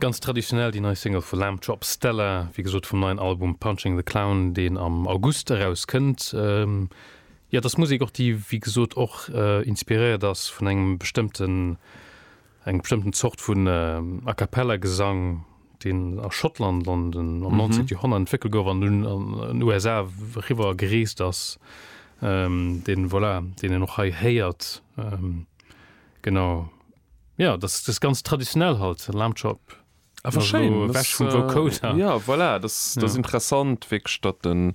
Ganz traditionell déi nei Single vu Lamb Chop, Stella, wéi gesot vum neien Album Punching the Clown, deen am August erauskënnt. Jo, et ass Musek och, déi wéi gesot och inspiréiert ass vun engem bestëmmten, enger bestëmmten Zort vun A Cappella Gesang, deen a Schottland am 19. Joerhonnert entwéckelt gouf an dunn an den USA eriwwer gereest ass, deen, voilà, deen een och hei héiert. Genau ja das das ganz traditionell halt Lamchop ah, das, äh, ja voilà, das, das ja. interessant weg statt den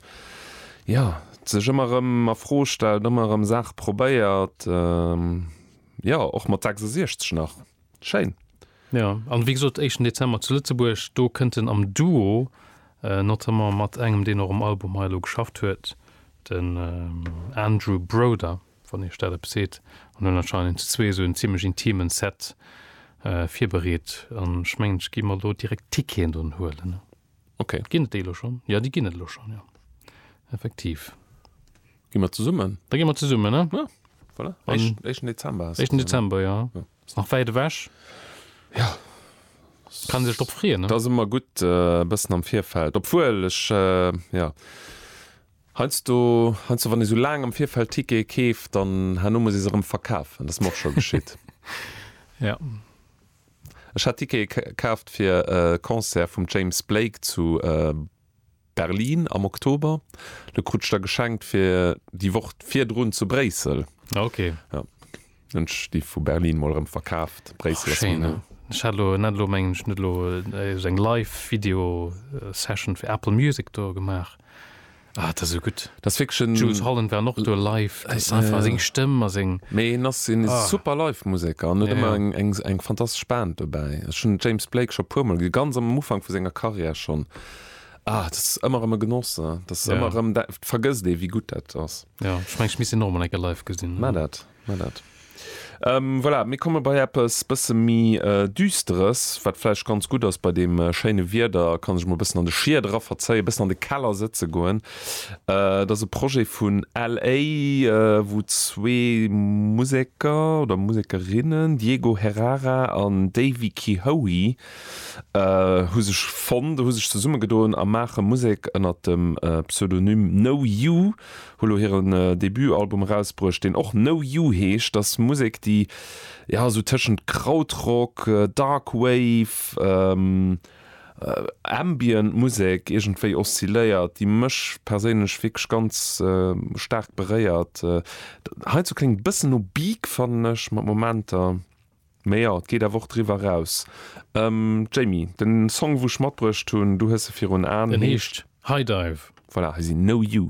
ja sech immer rem a froh stellt immer am Saach probéiert ähm, ja och mat 66 nach Schein. Ja an wie gesot echen Dezember zu Lützeburg do kënnten am Duo äh, not mat engem den noch um Album Heilo geschafft huet den ähm, Andrew Broder. wann Iech dat eppes seet, an hunn anscheinend zu zwee esou en zimlech intimen Set virbereet, an ech mengen ech gi mer elo direkt Ticketen drun huelen. Ok. Ginn et déi elo schonn? Jo, déi ginn et elo schonn, jo, effektiv. Gi mer zesummen? Da gi mer zesummen, ne? Jo, voilà. Éischten, éischten Dezember ass et. Éischten Dezember, jo. Ass nach wäit ewech. Jo. Kann ee sech drop freeën, ne? Et ass ëmmer gutt e bëssen am Virfeld, obwuel ech, jo. Heiansdo, heiansdo wann ee sou laang am Virfeld Tickete keeft, dann herno muss ee se erëm verkafen. Dat ass mer och scho geschitt. Ja. Ech hat Tickete kaaft fir e Concert vum James Blake zu Berlin am Oktober. Lo krut ech der geschenkt fir déi Woch virdrun zu Bréissel. Ah, okay. Ja. Ech gi vu Berlin mol erëm verkaaft. Bréissel ass méi no. Ech hat elo net elo mengen ech net elo sou eng live Video Session fir Apple Music do gemaach. Ah dat ass esou gutt. Dat ass wierklech en. Jools Holland war och do live. Dat ass einfach seng Stëmm a seng. Mee en ass en super live Museker an huet ëmmer eng eng fantastesch Band dobäi. Ech hunn James Blake scho e puer mol gesinn, ganz am Ufank vu senger Karriär schonn. Ah dat ass ëmmer erëm e Genoss. Dat ass ëmmer erëm, dat vergësst ee wéi gutt dat ass. Ja, ech mengen, ech misst en och emol eng Kéier live gesinn. Maa dat, maa dat. Voilà, mir komme bei eppes bësse méi Düsteres, wat vläicht ganz gutt ass bei deem schéine Wieder. Ka sech emol e bëssen an de Schied eraverzéien, e bëssen an de Keller sëtze goen. Et ass e Projet vun LA, wou zwee Museker oder Musekerinnen, Diego Herrara an Davy Kehoe, hu sech fonnt, hu sech zesummegedoen a maache Musek. Ënnert dem Pseudonym No You hu lo hiren Debutalbum erausbruecht, deen och No You heescht. Et ass Musek, déi jo esou tëschent Krautrock, Dark Wave, Ambient Musek iergendwéi oszilléiert, déi mech perséinlech wierklech ganz staark beréiert. Heizou kléngt e bëssen no Beak, fannen ech mat Momenter. Mee jo, et geet awer och driwwer eraus. Jamie, den Song wou ech matbruecht hunn, du hues se virun Aan, heescht? Den heescht Hi Dive. Voilà, hei sinn No You.